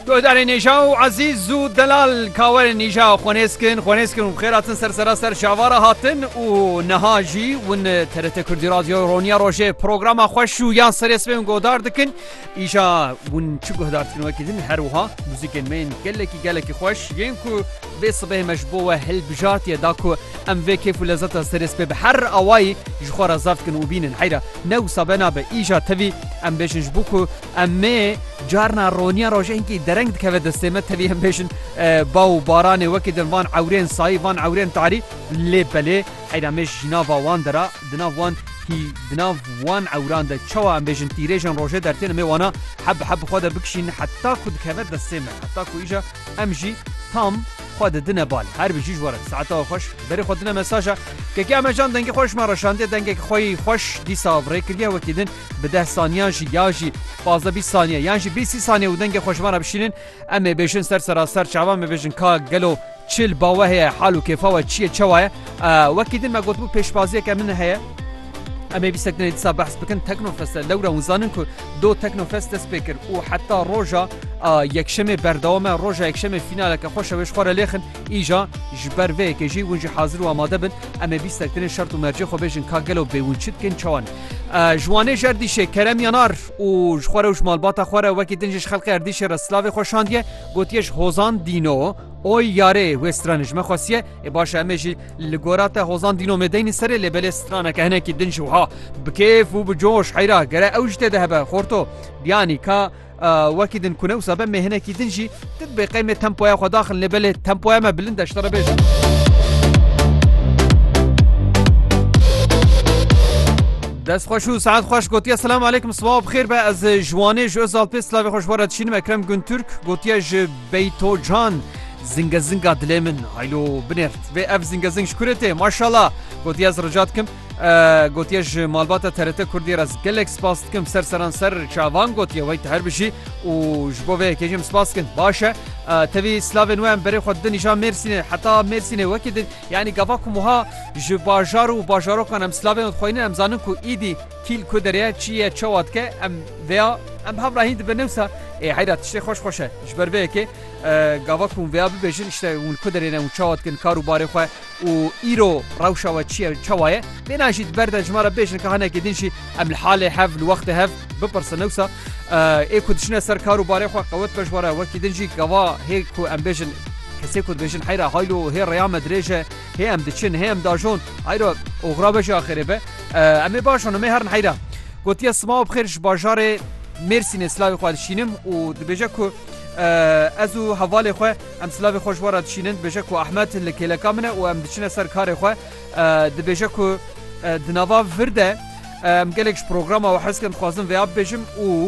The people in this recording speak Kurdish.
Guhdarê nêja û ezîz û delal ka werin nîja xwe nêzkin xwe nêzkin û bixêr hatin ser sera ser şavara hatin û niha jî win TRT Kurdî Radyoya Roniya Rojê programa xweş û yan serê sibên godar dikin îja win çi guhdar dikin wekî din her wiha muzîkên me yên gelekî gelekî xweş yên ku Vê sibehê me ji bo we hilbijartiye da ku em vê kêf û lezeta serê sibê bi her awayî ji xwe re zaf bikin û bînin. Heyra ne wisa be nabe. Îja tevî em bêjin ji bo ku emê carna roniya rojehînkî dereng dikeve destê me tevî em bêjin ba û baranê wekî din van ewrên sayî van ewrên tarî lê belê heyra mêj ji nava wan de ra di nav wan hî di nav wan ewran de çawa em bêjin tîrêjên rojê dertên emê wana heb bi heb bi xwe de bikişîn heta ku dikeve destê me heta ku îja Em jî tam xwe didine bal. Her bijî ji we re saeta we xweş. Berê xwe dine mesaja Kekê Emecan dengê xwe ji me re şandiye. Dengek xwe yî xweş dîsa rê kiriye wekî din bi deh saniyan jî ya jî pazdeh bîst saniye yan jî bîst sî saniye û dengê xwe ji me re bişînin. Em ê bêjin ser seraser çavan me bêjin ka gelo çil bawe heye hal û kêfa we çi ye çewa ye. Wekî din me gotibû pêşbaziyeke min heye. Em ê vî sekdinê dîsa behs bikin Teknofest'e lewre hûn zanin ku Do Teknofest dest pê kir û heta roja Yekşemê berdewam e. Roja Yekşemê fînaleke xweş e wê ji xwe re lêxin. Îja ji ber vê yekê jî hûn jî hazir û amade bin. Em ê bîstek tenê şert û mercê xwe bêjin ka gelo bê hûn çi dikin çawa ne. Ji Wanê ji Erdîşê Kerem Yanar û ji xwe re û ji malbata xwe re wekî din jî ji xelkê Erdîşê re silavê xwe şandiye. Gotiye ji Hozan Dîno, Oy yarê wê strane ji me xwestiye. Ê baş e em ê jî. Li gora te hozan dînomê deynî serê lê belê straneke hinekî din ji wiha bi kêf û bi coş heyra gere ew ji tê de hebe xorto biyanî ka wekî din kune wisa be mê hinekî din jî din bê qeymê tempoya xwe daxin lê belê tempoya me bilind e ji te re bêjim. Dest xweş û saet xweş gotiye selam aleykum sibav xêr be ez ji wanê ji Özalpê silavê xweş were dişînim Ekrem Gunturk gotiye ji Bey to can zinge zinga dilê min haylo bineft vê ev zinge zing ji kurê tê maşala gotiye ez rica dikim gotiye ji malbata TRT Kurdiyê re gelek spas dikim ser seran ser çavan gotiye wey te her bijî û ji bo vê yekê jî em spas dikin baş e tevî slavên we em berê xwe didin îşa Mêrsînê heta Mêrsînê wekî din yanî gava ku wiha ji bajar û bajarokan em slavên xweynin em zanin ku îdî Kîl ku derê, çi ye, çawa dike, em vêya, em hevrahin dibin newsa ê heyra tiştê xweş xweş e. Ji ber vê yekê gava ku hûn vêya bibêjin îşte hûn ku derê ne û çawa dikin kar û barê xwe û îro rewşa we çi ye û çawa ye. Bêhna jî di ber de ji me re bêjin ka hinekê din jî em li halê hev, li wextê hev bipirsin newsa ê ku diçine ser kar û barê xwe qewet beş were. Wekî din jî gava hê ku em bêjin kesê ku dibêjin heyra haylo hê rêya me dirêj e, Hê em diçin, hê em dajon. Heyra, oxra be ji axirê be. Em ê baş an, em ê herin heyra. Gotiye sima û bixêr ji bajarê Mêrsînê silavê xwe dişînim û dibêje ku ez û hevalê xwe em silavê xwe ji we re dişînin dibêje ku Ahmet li kêleka min e û em diçine ser karê xwe dibêje ku di nava vir de em gelek ji programa û heskin dixwazin vêya bibêjim û